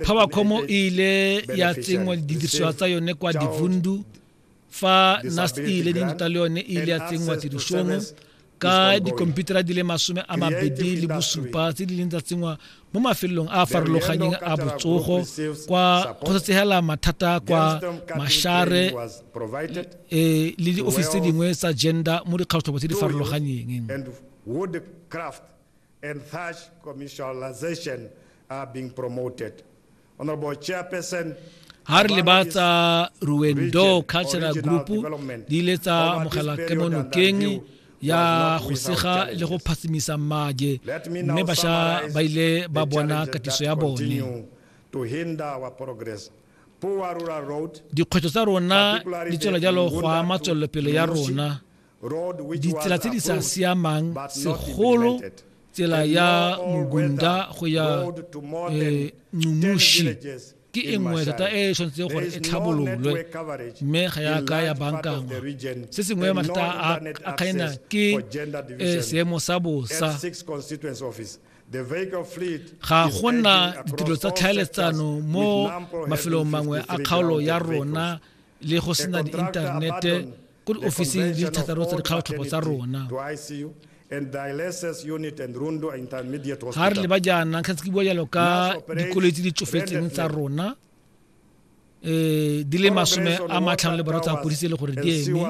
Powercom e ile ya tsenngwa didirisiwa tsa yone kwa Divundu fa NAST e ile di nta le yone e ile ya tsenngwa tirisong ka dikomputara di le masome a mabedi le bosupa tse di leng tsa tsenngwa mo mafelong a a farologaneng a botsogo kwa kgotsatsegela mathata kwa mashare e le diofisi tse dingwe tsa gender mo dikgatlhobo tse di farologaneng and such commercialization are being promoted. Honorable Chairperson, ha re leba tsa ruendo cultural group di ile tsa amogela kemonokeng ya go sega le go phatsimisa mmaje mme basha ba ile ba bona katiso ya bone dikgwetlho tsa rona di tswela jalo go ama tswelelopele ya rona ditsela tse di sa siamang segolo tsela ya mogunda go ya eh, nxumushi ke e nngwe thata e e tshwanetseng gore e tlhabololwe mme ga ya ka ya bankangwa se sengwe mathata a kgaena ke eh, seemo sa bosa ga go na ditiro tsa tlhaeletsano mo mafelong mangwe a kgaolo ya rona le go sena diinthanete ko diofising di thataro tsa dikgaotlhopo tsa rona ga re leba jaana kgetse ke bua jalo ka dikoloi tse di tsofetseng tsa rona um di le masome a matlhano le baro tsa kodise e le gore di eme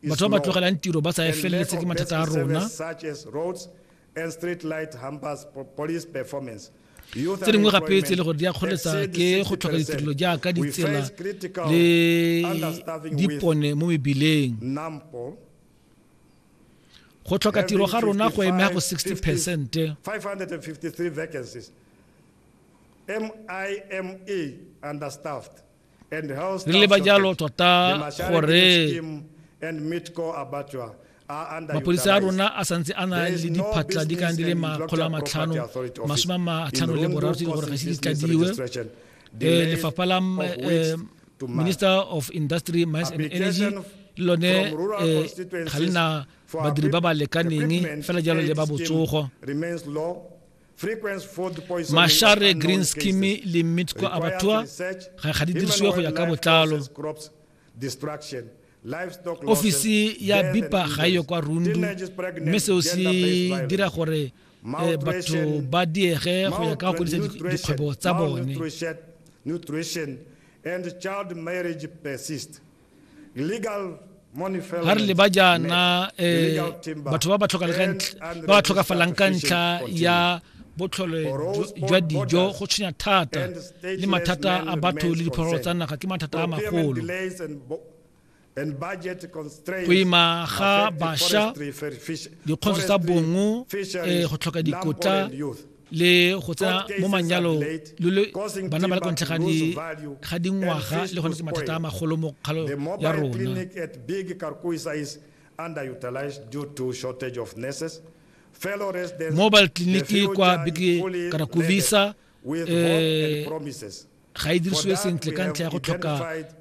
batho ba ba tlogelang tiro ba sa e feleletse ke mathata a rona tse dingwe gape tse e le gore di a kgoletsa ke go tlhoka ditirelo jaaka ditsela le dipone mo mebileng go tlhoka tiro ga rona go emega go 60 percent MIMA understaffed. re leba jalo tota gore mapodisa a rona a santse a na le diphatla di kang di le makgolo a matlhano masome a matlhano le boraro tse di gore ga se di tladiwe eh, lefapha la eh, minister of industry mines and energy lone eh, ga le na badiri ba ba lekaneng fela jalo le ba botsogo mashare green scheme le mitsco abattoir ga ga di dirisiwe go ya ka botlalo ofisi ya bipa ga e yo kwa rundu mme seo se dira gore eh, batho ba diege go ya ka go godisa dikgwebo tsa bone ga re leba jaana um batho ba ba tlhokafalang ka ntlha ya botlhole jwa dijo go tshwenya thata le mathata a batho le diphologolo tsa naga ke mathata a magolo go ima ga basha dikgontso tsa bongo um go tlhoka dikotla le go tsena mo manyalong lo le bana ba le kontlhe ga dingwaga le gone ke mathata a magolo mo kgalo ya rona mobile clinic kwa big karakubisa eh ga e dirisiwe sentle ka ntlha ya go tlhoka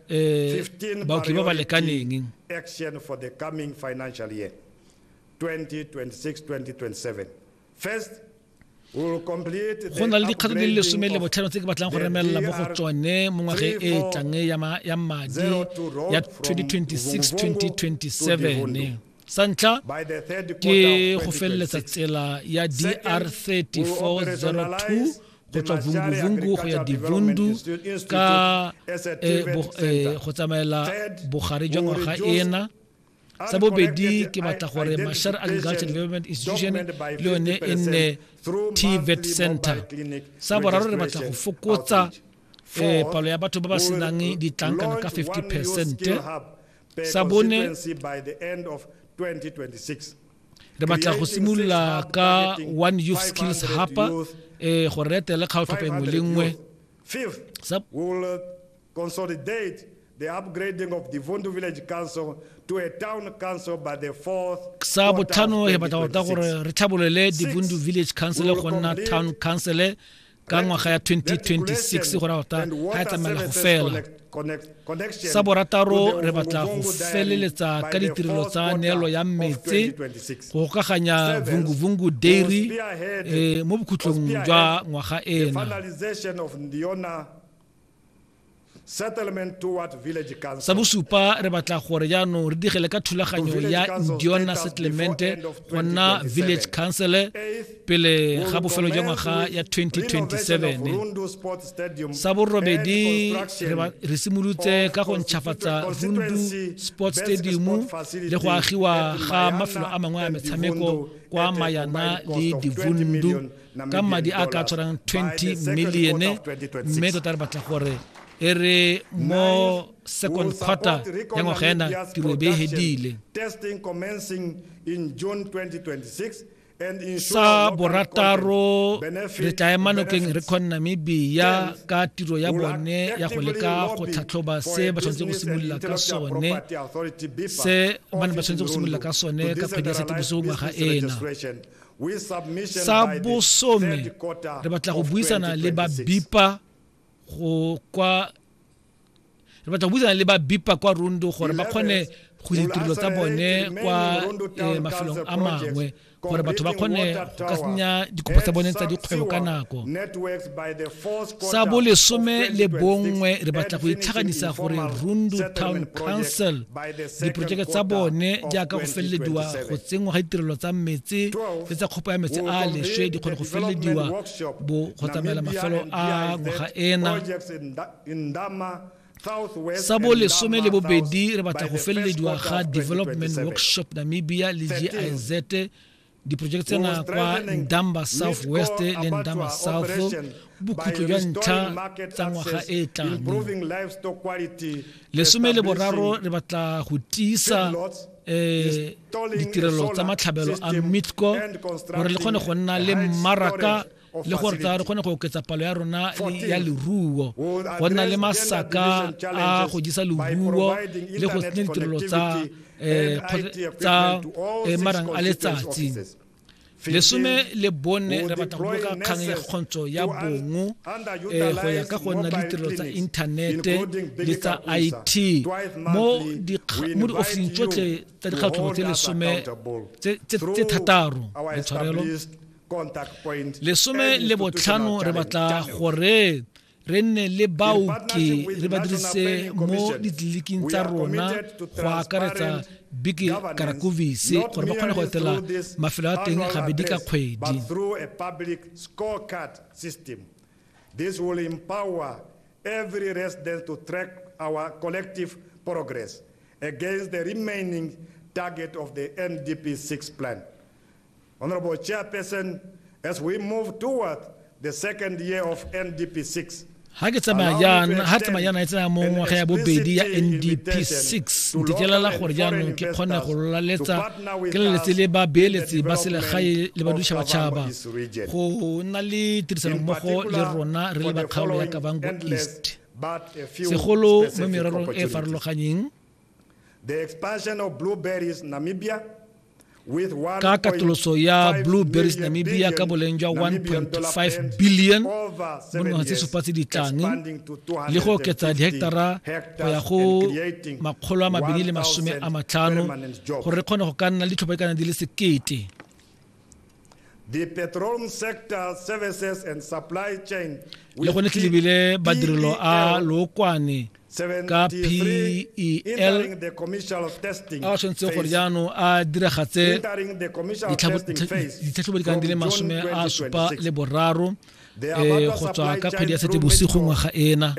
eh baoki ba ba lekaneng action for the coming financial year 2026 2027 First, go na le dikgato di le lesome le botlhano tse ke batlang go remelela mo go tsone mo ngwageng e e tlang ya madi ya 2026-2027 sa ntlha ke go feleletsa tsela ya dr 3402 go tswa vunguvungu go ya divundu ka eh, eh, go tsamaela bogare jwa ngwaga ena sa bobedi ke batla gore mashar agriculture development institution le yone e nne tvet center sa boraro re batla go fokotsa eh, palo ya batho ba ba senang ditlankana ka 50 percent sa bone re batla go simolola ka one youth skills hapa eh, gore re etele kgaotlhopo engwe le nngwe consolidate the upgrading of Divundu Village Council to a town council by the fourth sa botlhano re batla tota gore re tlhabolole divundu village council go nna town council ka ngwaga ya 2026 gore tota ga e tsamaela go fela sa borataro re batla go feleletsa ka ditirelo tsa neelo ya metse go gokaganya vunguvungu dairy eh, mo bokhutlong jwa ngwaga ena sa bosupa re batla gore jaanong re digele ka thulaganyo ya diona settlemente go nna village council pele ga bofelo jwa ngwaga ya 2027 sa borobedi re simolotse ka go ntšhafatsa rundu sports stadium le go agiwa ga mafelo a mangwe a metshameko kwa mayana le divundu ka madi a ka tshwarang 20 milione mme tota re batla gore e re mo second quarter ya ngwaga ena tiro e be e hedile sa borataro re tla ema nokeng re kgone namibia ka tiro ya bone ya go leka go tlhatlhoba se ba tshwanetse go simolola ka sone se ba ne ba tshwanetse go simolola ka sone ka kgwedi ya setebuso ngwaga ena sa bosome re batla go buisana le ba bipa go kwa re batla go buisana le ba bipa kwa rondo gore ba kgone go ditirelo tsa bone kwa eh, mafelong a mangwe gore batho ba kgone go ka senya dikopo tsa bone tsa dikgwebo ka nako sa bolesome le bongwe re batla go itlhaganisa gore rundu town council diporojeke tsa bone jaaka go felelediwa go tsenngwa ga ditirelo tsa metsi le tsa kgopo ya metsi a leswe di kgone go felelediwa bo go tsamaela mafelo a ngwaga ena sa bo lesome le bobedi re batla go felelediwa ga development workshop namibia le giz diporojeke tsena kwa ndamba south west le ndamba south bokhutlo jwa ntlha tsa ngwaga e e tlang lesome le boraro re batla go tiisa um ditirelo tsa matlhabelo a mitco gore le kgone go nna le mmaraka le gore tla re kgone go oketsa palo ya rona ya leruo go nna le masaka a go jisa leruo le go tsenya ditirelo tsa eh, tsa eh, marang a letsatsi lesome le bone re batla go boloka kgang ya kgontsho ya bongo eh, go ya ka go nna le ditirelo tsa inthanete le tsa it mo diofising tsotlhe tsa dikgatlhobo tse lesome tse thataro letshwarelo lesome le botlhano re batla gore re nne le baoki re ba dirise mo ditleliniking tsa rona go akaretsa biki karakovise gore ba kgone go etela mafelo a teng gabedi ka kgwedi This will empower every resident to track our collective progress against the remaining target of the NDP 6 plan. Honorable Chairperson, as we move toward the second year of NDP 6, ga ke tsamaya jaana ga tsamaya jaana e tsena mo ngwaga ya bobedi ya ndp 6 ntetlelela gore jaanong ke kgone go laletsa ke leletse le babeeletsi ba selegae le badutšhabatšhaba go nna le tirisanommogo le rona re le bakgaolo ya kavango east segolo mo mererong e farologanyeng The expansion of Blueberries Namibia ka katoloso ya blue berries namibia ka boleng jwa 1.5 billion mo dingwaga tse supa tse ditlane le go oketsa diheketara go ya go makgolo a mabedi le masome a matlhano gore re kgone go ka nna le ditlhopha di le sekete le go letlelebile badirelo a e lookwane ka PEL a o tshwanetse gore jaanong a diragatse ditlhatlhobo di kang di le masome a supa le boraro eh, go tswa ka kgwedi ya sete bosigo ngwaga ena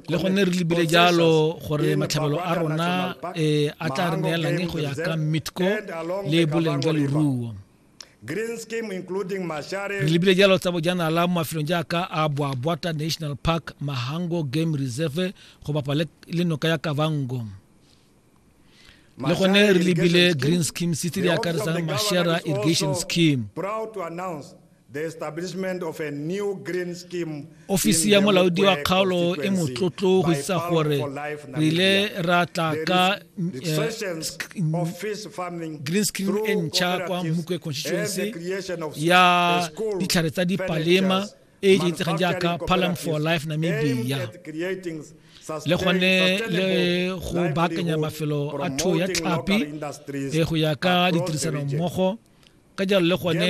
le gone re lebile jalo gore matlhabelo a rona eh, a tla re neelang go ya ka mitco le boleng jwa leruo re lebile jalo tsa bojanala mo mafelong jaaka a boabwata national park mahango game reserve go bapa le noka ya kavango le gone re lebile green scheme se tse di akaretsang mashera irrigation scheme ofisi ya molaodi wa kgaolo e motlotlo go isa gore re ile ra tla ka eh, green screen e ntšha kwa mokwe constituency ya ditlhare tsa dipalema e e itsegeng jaaka palam for life namibia le gone le go baakanya mafelo a thuo ya tlhapi e go ya ka ditirisanommogo ka jalo le gone